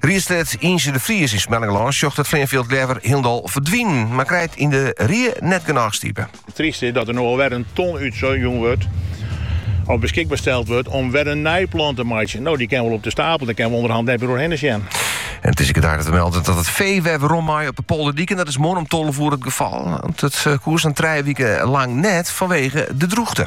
Riedslid Yntze de Vries yn Smellingerlân sjocht it fleanfjild leaver hielendal ferdwinen, mar krijt yn de rie net genôch stipe. It tryste is dat der no al wer in ton útjûn wurdt of beskikber steld wurdt om wer in nij plan te meitsjen. No, dy kin wol op de stapel, dêr kinne we ûnderhand net mear oer hinne sjen. En it is ek gedaan te melden dat it fee wer werom mei op de polderdiken en dat is moarn om tolve oere it gefal, want it koe sa'n trije wiken lang net fanwege de drûchte.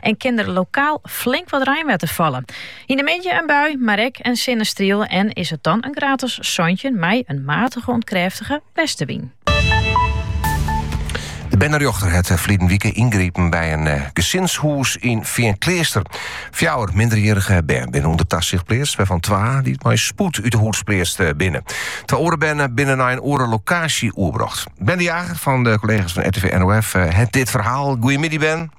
en kin der lokaal flink wat reinwetter falle. Yn de middei in bui, mar ek in sinnestriel en is it dan in graad as santjin mei in matige oant krêftige westewyn. De bernerjochter hat eh, ferline wike yngrepen by in eh, gesinshûs yn Feankleaster. Fjouwer minderjierrige bern binne ûnder tasicht pleatst, wêrfan twa dy't mei spoed út de hûs pleatst eh, binne. Twa oare bern binne nei in oare lokaasje oerbrocht. Ben de Jager fan de kollega's fan RTV NOF hat dit ferhaal. Goedemiddag Ben.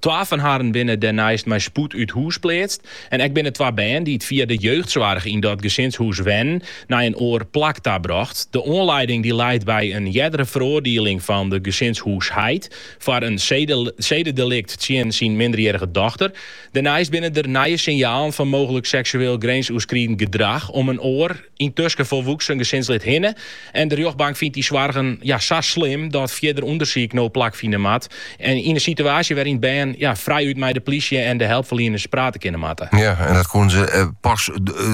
Twa fan harren binne dêrneist mei spoed út hûs pleatst en ek binne twa bern dy't fia de jeugdsoarch yn dat gesinshûs wennen, nei in oar plak ta brocht. De oanleiding dy leit by in eardere feroardieling fan de gesinshûsheid foar in sededelikt tsjin syn minderjierrige dochter. Dêrneist binne der nije sinjalen fan mooglik seksueel grinsoerskridend gedrach om in oar. yntusken folwoeksen gesinslid hinne en de rjochtbank fynt dy soargen ja, sa slim dat fierder ûndersyk no plakfine moat. En yn in situaasje wêryn't bern ja, frijút mei de plysje en de helpferlieners prate kinne moatte. Ja, en dat koene se pas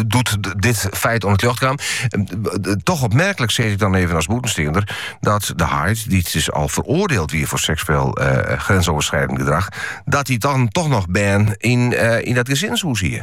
doe't dit feit oan it ljocht kaam. Toch opmerklik, sis ik dan even as bûtensteander, dat de heit, dy't dus al feroardield wie foar seksueel grensoverschrijdend gedrag, dat dy dan toch noch bern yn dat gesinshûs hie.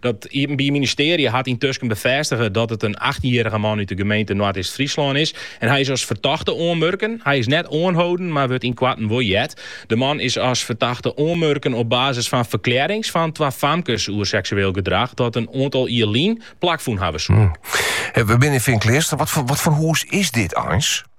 Dat Iepenbier Ministearje hat yntusken befêstige dat it in achttjinjierrige man út de gemeente Noardeast-Fryslân is en hy is as fertochte oanmurken. Hy is net oanholden, mar wurdt ynkoarten wol heard. De man is as fertochte oanmurken op basis fan ferklearrings fan twa famkes oer seksueel gedrach dat in oantal jier lyn plakfûn hawwe soe. We binne yn Feankleaster. Wat foar hûs is dit eins?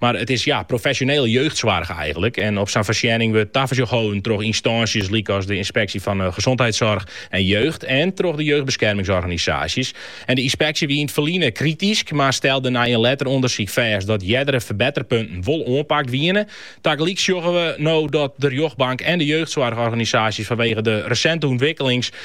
Mar it is ja, profesjonele jeugdsoarch eigenlik en op sa'n foarsjenning wurdt tafersjoch holden troch ynstânsjes lykas de Ynspeksje fan Gezondheidszorg en Jeugd en troch de jeugdbeskermingsorganisaasjes. En de ynspeksje wie yn it ferline kritysk, mar stelde nei in letter ûndersyk fêst dat eardere ferbetterpunten wol oanpakt wiene. Tagelyk sjogge we no dat de rjochtbank en de jeugdsoarchorganisaasjes fanwege de resinte ûntwikkelings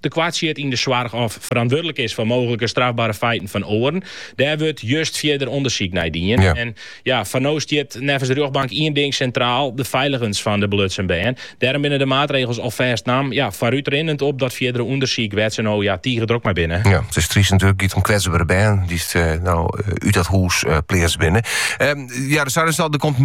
te koart sjit yn de soarch of ferantwurdlik is foar mooglike strafbare feiten fan oaren. Dêr wurdt just fierder ûndersyk nei dien. En ja, foar no stiet neffens de rjochtbank ien ding sintraal, de feiligens fan de belutsen bern. Dêrom binne de maatregels alfêst naam, ja, foarútrinnend op dat fierdere ûndersyk wêr't se no ja, tige drok mei binne. Ja, it is tryst natuerlik, giet om kwetsbere bern dy't no út dat hûs pleatst binne. Ja, de Sarenstal, der komt